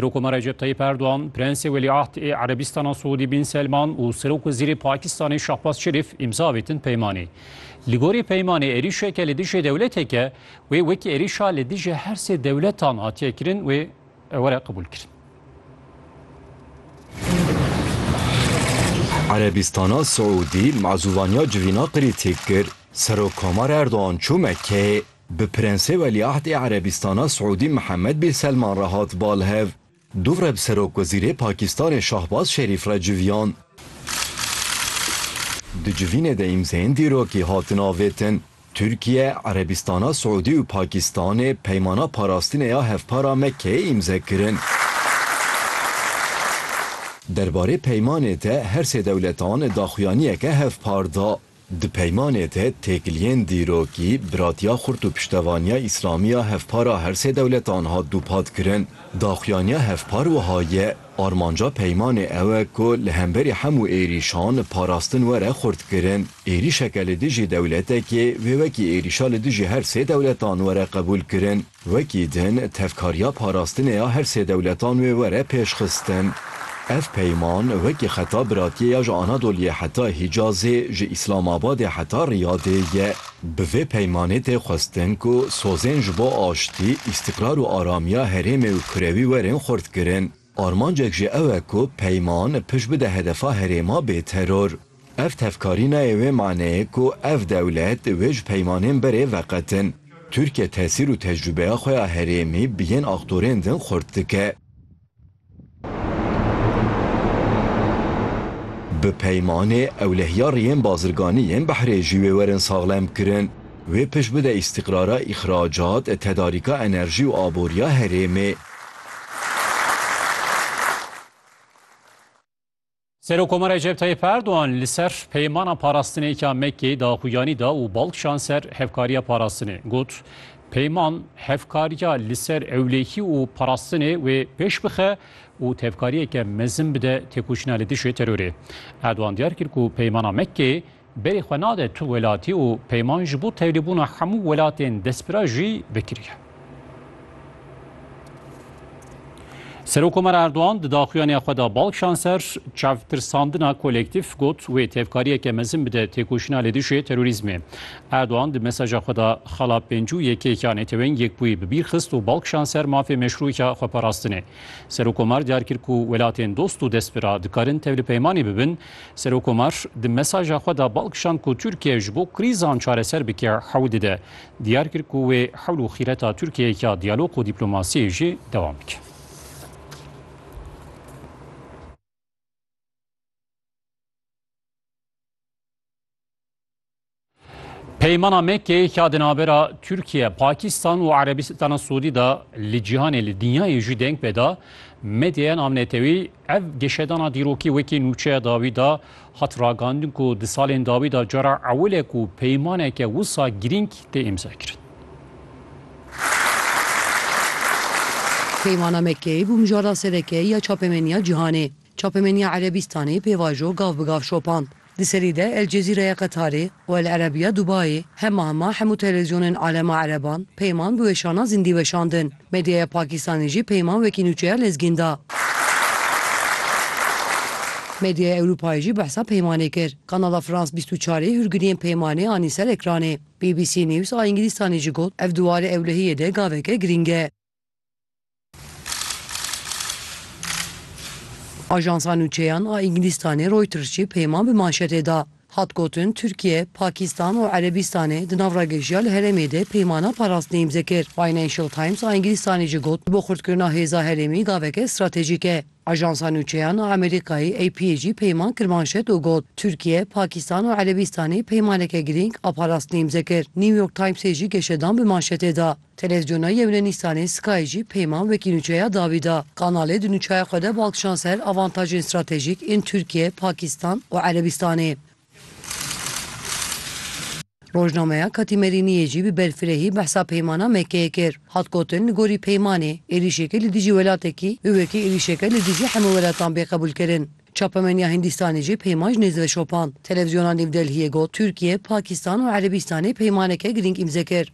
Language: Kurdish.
Rokoma Recep Tayyip Erdogan, Prensê Welîahd ê Erebîstana Siûdî Bin Selman û Serokwezîrê Pakistanê Şahbaz Şerîf îmza avêtin peymanê. Li gorî peymanê êrîşeke li dijî dewleteke wê wekî êrîşa li dijî her sê dewletan hatiye kirin wê were qebûl kirin. Erebîstana Siûdî mazûvaniya civîna qirî têk kir. Serokkomar Erdogan çû Mekkeyê. Bi Prensê Welîahd ê Erebîstana Siûdî Mihemed Bîn Selman re hat bal hev. Dûv re bi Serokwezîrê Pakistanê Şahbaz Şerîf re civiyan. Di civînê de îmzeyên dîrokî hatin avêtin. Tirkiye, Erebîstana Siûdî û Pakistanê Peymana Parastinê ya Hevpara Mekkeyê îmze kirin. Derbarê peymanê de her sê dewletan daxuyaniyeke hevpar da. Di peymanê de têkiliyên dîrokî, biratiya xurt û piştevaniya Îslamî ya hevpara her sê dewletan hat dûpatkirin. Daxuyaniya hevpar wiha ye, Armanca peymanê ew e ku li hemberî hemû êrîşan parastin were xurtkirin. Êrîşeke li dijî dewletekê wê wekî êrîşa li dijî her sê dewletan were qebûlkirin. Wekî din tevkariya parastinê ya her sê dewletan wê were pêşxistin. Ev peyman wekî xeta biratiyê ya ji Anadoliyê heta Hîcazê, ji Îslamabadê heta Riyadê ye. Bi vê peymanê tê xwestin ku sozên ji bo aştî, îstîqrar û aramiya herêmê û kurewî werin xurtkirin. Armancek jî ew e ku peyman pişt bide hedefa herêma bê teror. Ev tevkarî nayê wê maneyê ku ev dewlet wê ji peymanên berê veqetin. Tirkiye tesîr û tecrûbeya xwe ya herêmî bi yên aktorên din xurt dike. Bi peymanê ewlehiya riyên bazirganî yên behrê jî wê werin saxlemkirin. Wê pişt bide îstîqrara îxracat, tedarîka enerjî û aboriya herêmê. Serokkomara Recep Tayyip Erdogan li ser peymana parastinêka Mekkeyê daxuyanî da û bal kişand ser hevkariya parastinê. Got, Peyman hevkariya li ser ewlekî û parastinê wê pêş bixe û tevkariyeke mezin bide têkoşîna li dijî terorê. Erdogan diyar kir ku peymana Mekkeyê Berê xwe nade tu welatî û peyman ji bo tevlîbûna hemû welatên destpira jî vekiriye. Serokkomar Erdogan di daxuyaniya xwe de bal kişand ser çavtirsandina kolektîf, got wê tevkariyeke mezin bide têkoşîna li dijî terorîzmê. Erdogan di mesaja xwe de xala pênc û yekê ya Neteweyên Yekbûyî bi bîr xist û bal kişand ser mafê meşrû ya xweparastinê. Serokkomar diyar kir ku welatên dost û destpira dikarin tevlipeymanê bibin Serokkomar di mesaja xwe de bal kişand ku Tirkiye ji bo krîzan çareser bike hewl dide. Diyar kir ku wê hewl û xîreta Tirkiyeyê ya diyalog û dîplomasiyê jî dewam bike. Peymana Mekkeyê ya di navbera Tirkiye, Pakistan û Erebistana Sûdî de li cîhanê li dinyayê jî deng pê da. Medyaya navnetewî ev geşedana dîrokî wekî nûçeya dawî da hat ragandin ku di salên dawî da cara ewil e ku peymaneke wisa girîng tê îmzakirin. Peymana Mekkeyê bû mijarda sereke ya çapemeniya cîhanê. Çapemeniya Erebîstanê pêvajo gav bi gav şopand. Di serî de El Cezîre ya Qetarê û El Erebiya Dubayê hema hema hemû televîzyonên alema ereban Peyman bi weşana zindî weşandin. Medyaya Pakistanî jî Peyman wekî nûçeya lezgîn da. Medyaya Ewropayê jî behsa Peymanê kir. Kanala France bîst û çarê hûrgiliyên Peymanê anî ser ekranê. BBC News a Îngilîstanê jî got, Ev di warê ewlehiyê de gaveke girîng e. Ajansa nûçeyan a Îngilîstanê Reuters jî peyman bi manşetê da. Hat gotin Tirkiye, Pakîstan û Erebîstanê di nav ragejiya li herêmê de peymana parastinê îmze kir. Financial Times a Îngilîstanê jî got, Bo xurtkirina hêza herêmî gaveke stratejîk e. Ajansa nûçeyan a Amerîkayê AP'ê jî peyman kir manşet û got, Tirkiye, Pakîstan û Erebîstanê peymaneke girîng a parastinê îmze kir. New York Times'ê jî geşedan bi manşetê da, Televîzyona Yewnenîstanê Sky jî peyman wekî nûçeya dawî da. Kanalê di nûçeya xwe de bal kişand ser avantajên stratejîk ên Tirkiye, Pakistan û Erebîstanê. Rojnameya Katîmerîniyê jî bi berfirehî behsa peymana Mekkeyê kir. Hat gotin li gorî peymanê, êrîşekê li dijî welatekî bi wekî êrîşeke li dijî hemû welatan bê qebûlkirin. Çapemeniya Hindîstanê jî peyman ji nêz ve şopand. Televîzyona Newdelhiyê got, Tirkiye, Pakistan û Erebîstanê peymaneke girîng îmze kir.